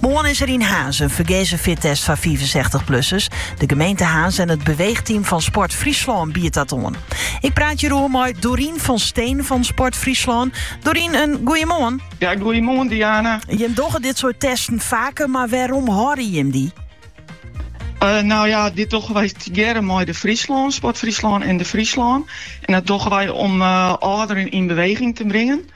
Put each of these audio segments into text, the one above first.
Moarn is der yn Harns in fergeaze fittest foar fiifensechstich plussers. De gemeente Harns en it beweegteam fan Sport Fryslân biedt dat oan. Ik praat hieroer mei Dorien van Steen fan Sport Fryslân. Dorien, in goeiemoarn. Ja, goeiemoarn Diana. Jim dogge dit soort testen faker, mar wêrom hâlde jim dy? Eh, nou ja, dit dogge wy tegearre mei De Friesland, Sport Fryslân en De Friesland. En dat dogge wy om uh, âlderen yn beweging te bringen.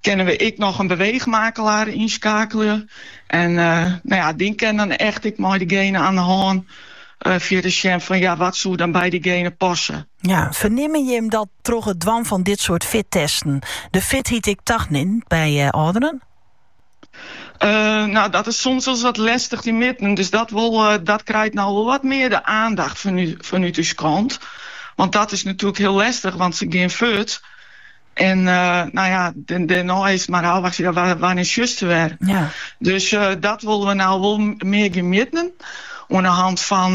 Kinne we ek noch in beweechmakelder ynskakelje. En no ja, dy kin dan echt ek mei dygene aan de hân fierder sjen fan ja, wat soe dan by dygene passe. Ja, fernimmen jim dat troch it dwaan fan dit soart fittesten de fitheid ek tanimt by âlderen? no, dat is soms wolris wat lestich te mitten. Dus dat wol, dat krijt no wol wat mear de aandacht fanút ús kant. Want dat is natuurlijk heel lestich, want se gean furt. En nou ja, dêrnei is mar ôfwachtsje, ja, wannear sjochst se wer? Dus dat wolle we no wol mear gean mjitten oan 'e hand fan